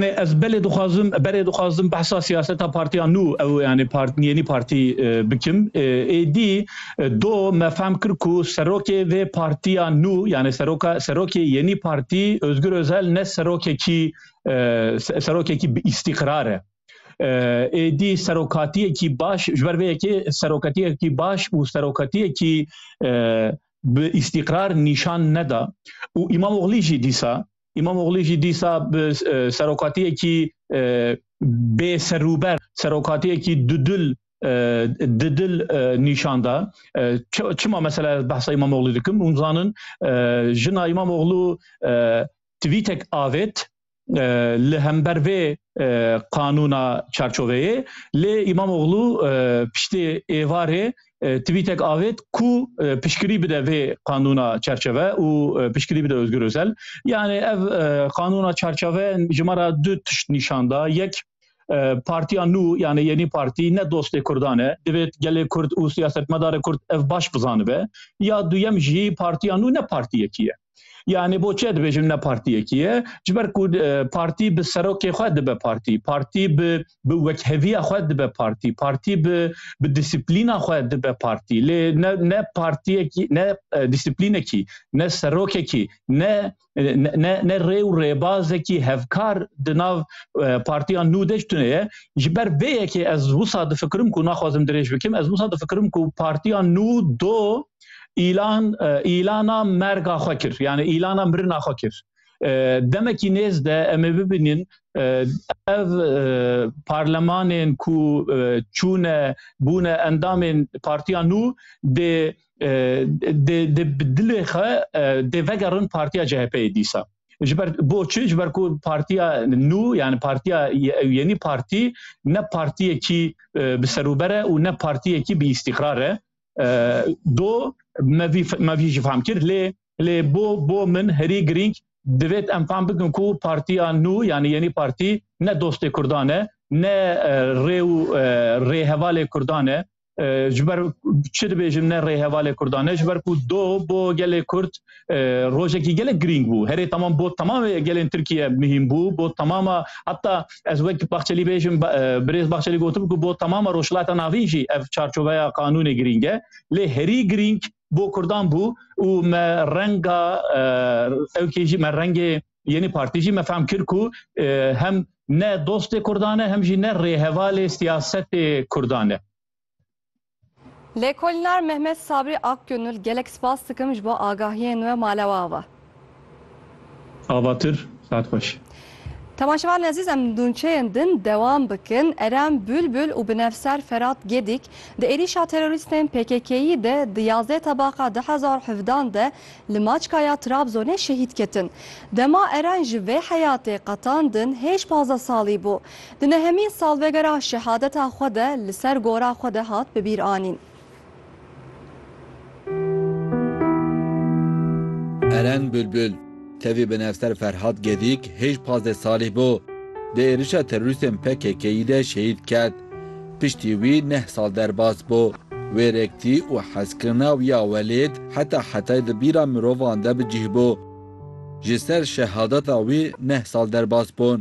Ez belê dixwazim, berê dixwazim behsa siyaseta partiya nû ew yanî yênî partî bikim. Êdî do me fehm kir ku serokê vê partiya nû yanî seroka serokê yênî partî Ozgur Ozel ne serokekî serokekî bi îstîqrar e. Êdî serokatiyekî baş ji ber vê yekê serokatiyekî baş û serokatiyekî bi îstîqrar nîşan neda û Îmamoglî jî dîsa Îmamoglî jî dîsa bi serokatiyekî bê serûber, serokatiyekî dudil didil nîşan da. Çima mesela ez behsa Îmamoglî dikim? Hûn zanin jina Îmamoglû twîtek avêt li hember vê qanûna çarçoveyê lê Îmamoglû piştê êvarê Twîtek avêt ku pişkirî bide vê qanûna çerçeve û pişkirî bide Ozgur Ozel. Yanê ev qanûna çerçeve ji me ra du tişt nîşan da. Yek partiya nû yanê yenî partî ne dostê Kurdan e. Divêt gelê Kurd û siyasetmedarê Kurd ev baş bizanibe. Ya duyem jî partiya nû ne partiyekî ye. Yani bo çi dibêjim ne partiyekî ye ji ber ku partî bi serokê xwe dibe partî partî bi bi wekheviya xwe dibe partî partî bi bi disiplîna xwe dibe partî lê ne ne partiyekî ne disiplînekî ne serokekî ne ne ne rê û rêbazekî hevkar di nav partiya nû de tune ye ji ber vê yekê ez wisa difikirim ku naxwazim dirêj bikim ez wisa difikirim ku partiya nû do îlan îlana merga xwe kir yani îlana mirina xwe kir demekî nêz de em ê bibînin ev parlemanên ku çûne bûne endamên partiya nû dê dê bi dilê xwe dê vegerin partiya CHP'yê dîsa. Ji ber bo çi ji ber ku partiya nû yani partiya yenî partî ne partiyekî bi serûbere û ne partiyekî bi îstîqrar e. Do me vî ji fam kir lê lê bo bo min herî girîng divêt em fam bikin ku partiya nû yanî yenî partî ne dostê Kurdan e ne rê û rêhevalê Kurdan e ji ber çi dibêjin ne rêhevalê Kurdan e ji ber ku do bo gelê Kurd rojekî gelek girîng bû herê temam bo temamê gelên Tirkiye mihîm bû bo temama heta ez wek Bahçelî bêjim birêz Bahçelî gotim ku bo temama Rojhilata Navîn jî ev çarçoveya qanûnê girîng e lê herî girîng bo Kurdan bû û me renga ew kê jî me rengê yenî partî jî me fehm kir ku hem ne dostê Kurdan e hem jî ne rêhevalê siyasetê Kurdan e. Lêkolînar Mehmet Sabri Akgönül gelek spas dikim ji bo agahiyên we malewa ve. Avatur saet xweş. Temaşevanên ezîz em dûnçeyên din dewam bikin. Erem Bülbül û binevser Ferat Gedik di êrîşa terorîstên PKK'yî de di yazdeh tebaqa du hezar û hevdan de li Maçka ya Trabzonê şehîd ketin. Dema Eren ji vê heyatê qetandin hêj pazdeh salî bû. Di nehemîn salvegera şehadeta xwe de li ser gora xwe de hat bi bîr anîn. Eren Bulbul, tevî binevser Ferhat Gedîk hêj pazdeh salî bû. Di êrişa terorîstên PKK'î de şehîd ket. Piştî wî neh sal derbas bû. Wêrektî û hezkirina wî ya welêt heta hetayê di bîra mirovan de bi cih bû. Ji ser şehadeta wî neh sal derbas bûn.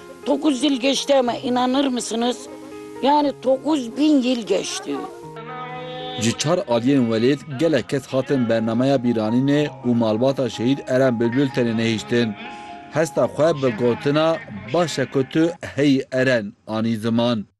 Dokuz yıl geçti ama inanır mısınız? Yani dokuz bin yıl geçti. Ji çar aliyên welêt gelek kes hatin bernameya bîranînê û malbata şehîd Eren Bilbil tenê nehiştin. Hesta xwe bi gotina Baş e ku tu heyî Eren anî ziman.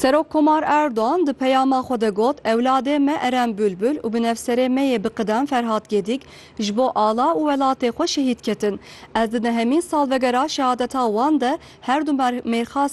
Serok Komar Erdogan di peyama xwe de got, Ewladê me Eren Bulbul û binefserê me yê biqidem Ferhat Gedik ji bo ala û welatê xwe şehîd ketin. Ez di dehemîn salvegera şehadeta wan de her du mêrxa